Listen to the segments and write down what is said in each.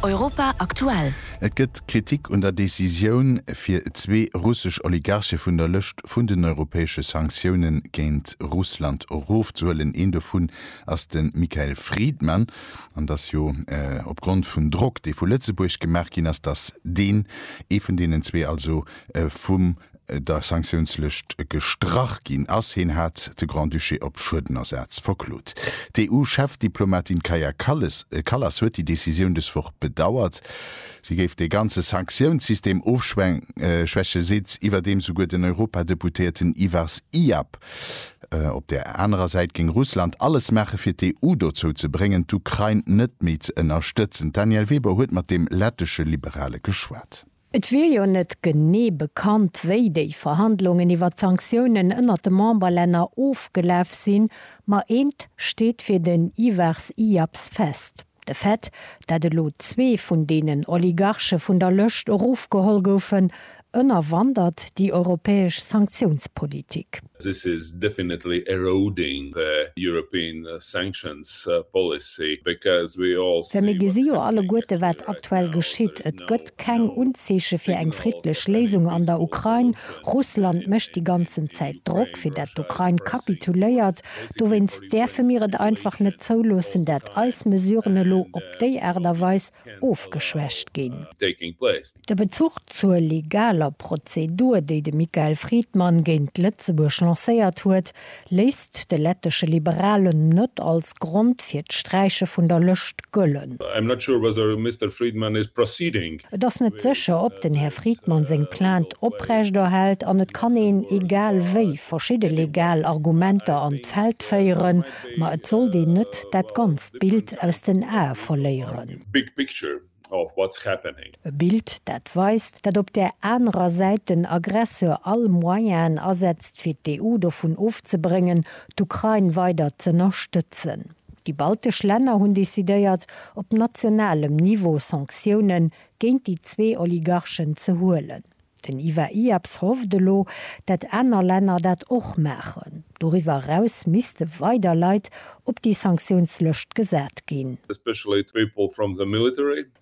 Europa aktuell. Et gëtt Kritik un der Decisioun, fir zwee russesch Oligarche vun der Lëscht vun den europäesche Sanktioune géint Russland erofzehuelen. Een dovun ass de Michael Friedman. An et ass jo opgrond vum Drock, dee vu Lëtzebuerg gemaach ginn ass, datt deen, ee vun deenen zwee also vum der Sanktiounslëscht gestrach ginn ass. Hien hat de Grand-Duché op Schuedenersaz verklot. D'EU-Chefdiplomatin Kaja Kallas huet déi Decisioun dës Woch bedauert. Si géif de ganze Sanktiounssystem ofschwäche seet iwwerdeems souguer den Europadeputéierten Ivars Iab. Op där anerer Säit géing Russland alles maache fir d'EU dozou ze bréngen, d'Ukrain net méi ze ënnerstëtzen. D'Danièle Weber huet mat dem lettesche Liberale geschwat. Et wier jo net genee bekannt, wéi déi Verhandlungen iwwer d'Sanktiounen ënnert de Memberlänner ofgelaf sinn, ma eent steet fir den Ivars Iaps fest, De Fait, dat elo zwee vun deenen Oligarche vun der Lëscht erofgeholl goufen, ënnerwandert déi europäesch Sanktiounspolitik. This is definitely eroding the European sanctions policy because we all see what's happening at the moment. Well mir gesi jo alleguerte wat aktuell geschitt. Et gëtt keng Unzeeche fir eng friddlech Léisung an der Ukrain. Russland mécht déi ganzen Zäit Drock fir dat d'Ukrain kapituléiert. Dowéinst däerfe mir et einfach net zouloossen dat eis Mesuren elo op déi Aart a Weis ofgeschwächt ginn. De Bezuch zur legaler Prozedur, déi de Michael Friedmann géint Lëtzebuerg lancéiert huet, léisst de lettesche Liberalen net als Grond fir d'Sträiche vun der Lëscht gëllen. Et ass net sécher, ob den Här Friedmann seng Plainte oprechterhält an et kann een, egal wéi, verschidde legal Argumenter an d'Feld féieren, ma et sollt een net dat ganzt Bild aus den Ae verléieren. of what's happening. E Bild dat weist, dat op där anerer Säit den Aggresseur all Moyenen asetzt fir d'EU dovun ofzebréngen d'Ukrain weider z'ënnerstëtzen. Déi baltesch Länner hunn decidéiert op nationalem Niveau Sanktiounen géint déi zwee Oligarchen ze huelen. Den Ivar Iaps hofft elo, dat aner Länner dat och maachen. Doriwwer eraus misste weider Leit op déi Sanktiounslëscht gesat ginn.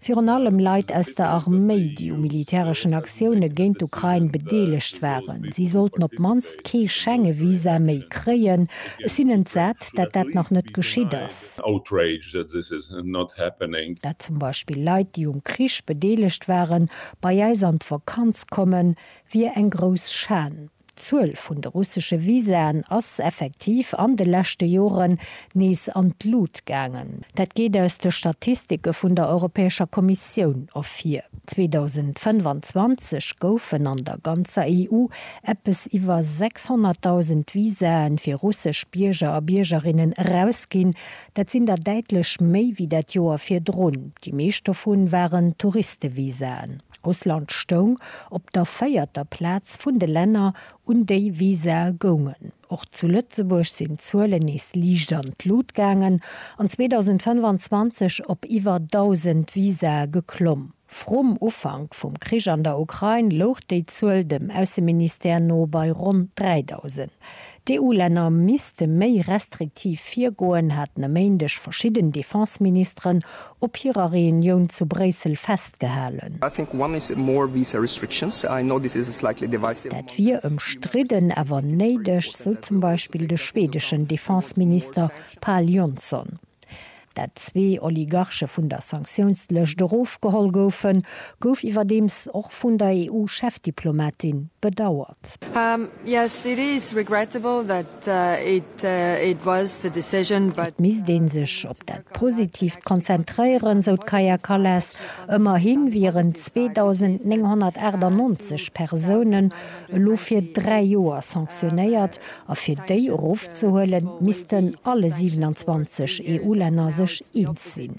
Virun allem Leit aus der Arméi, déi u militäreschen Aktioune géint d'Ukrain bedeelegt waren. Si sollten op d'mannst kee Schengevisa méi kréien. Ech sinn entsat, dat dat nach net geschitt ass. Dat zum Beispill Leit, déi um Krich bedeelegt waren, bei eis an d'Vakanz kommen, wier eng grouss Schan. D'Zuel vun de russesche Visaen ass effektiv an de leschte Joren nees an d'Lut gaangen. Dat geet aus de Statistike vun der Europäescher Kommissioun ervir. 2025 goufen an der ganzer EU eppes iwwer 600.000 Visae fir russesch Bierger a Biergerinnen erausginn, Dat sinn der däitlech méi wéi dat Joer virdrun. Déi meescht dovu waren Touristevisaen. Russland stoung op der véierter Plaz vun de Länner, un déi Visae goungen. Och zu Lëtzebuerg sinn d'Zuelen nees liicht an d'Lut gaangen an 2025 op iwwer 1.000 Visae geklomm. Vrum Ufank vum Krich an der Ukrain louch déi Zuel dem Ausseministère no bei ronn 3.000. D'EU-Länner misste méi restriktiv virgoen, haten e Méindeg verschidden Defense-Ministeren op hirer Reunioun zu Bréissel festgehalen. Dat wier ëmstridden, awer néideg, sou zum Beispill de schwedeschen Defense-Minister Pal Jonsson. dat zwee Oligarche vun der Sanktiounslëscht erofgeholl goufen, gouf iwwerdeems och vun der EU-Chefdiplomatin bedauert. Et misst ee sech op dat Positiivt konzentréieren, sou d'Kaja Kallas. Ëmmerhi wieren 2.998 Persounen elo fir dräi Joer sanktionéiert, A fir déi erofzehuelen, missten alle 27 EU-Länner sech eens sinn.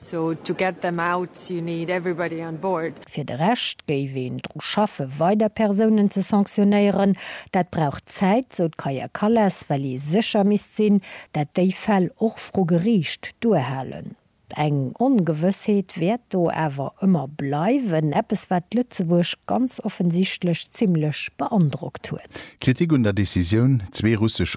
Fir de Rescht géif een dru schaffe weider Persounen ze sanktionéieren. Dat brauch Zäit, sou d'Kaja Kallas, well ee sécher misst sinn, dat déi Fäll och vru Geriicht duerhalen. Eng Ongewëssheet wäert do awer ëmmer bleiwen, eppes wat Lëtzebuerg ganz offensichtlech zimmlech beandrockt huet. Kritik un der Decisioun, zwee russesch